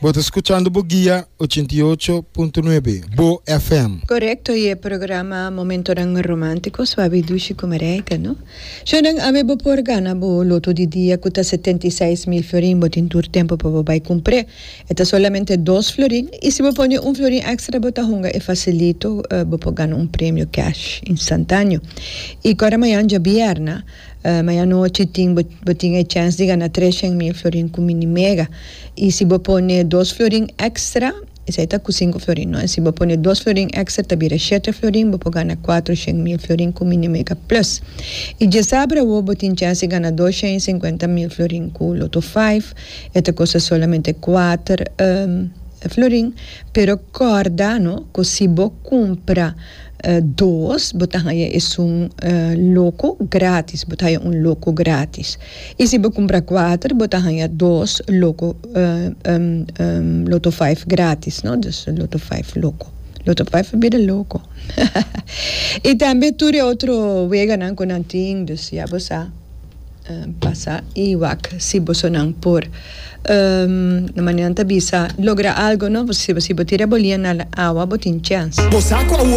Bo ta scuchando bo guia ochenta i ocho punto nuebe Bo FM. Correcto y e programa Momentonan Romantico suabi dushi cu mareita, no? Shownan Awe bo por gana bo loto di dia cu ta setenta i seis mil florin, bo tin tur tempo pa bo bay cumpr'e. E ta solamente dos florin y si bo pone un florin extra bo ta hunga e facilito bo por gana un premio cash instantaneo. Y cora mañan djabierna. Mañanochi tin bo tin e chèns di gana treshen mil florin ku Mini Mega. I si bo pone dos florin èkstra, esei ta ku sinku florin nò, si bo pone dos florin èkstra ta bira shete florin, bo por gana kuatroshen mil florin ku Mini Mega Plus. I djasabra awo bo tin chèns di gana doshen i sinkuenta mil florin ku Lotto Five, e ta kosta solamente kuater florin, pero kòrda no ku si bo kumpra. Dos, bo ta haña esun loko grátis, bo ta haña un loko grátis. I si bo kumpra kuater, bo ta haña dos loko, loto vijf, grátis, no. Dus loto vijf loko. Loto vijf a bira loko. I tambe tur e otro weganan ku nan tin, dus ya bo sa pasa i wak si bosonan por na manera nan ta bisa logra algu, no. Si bo tira bo lien na awa bo tin chèns.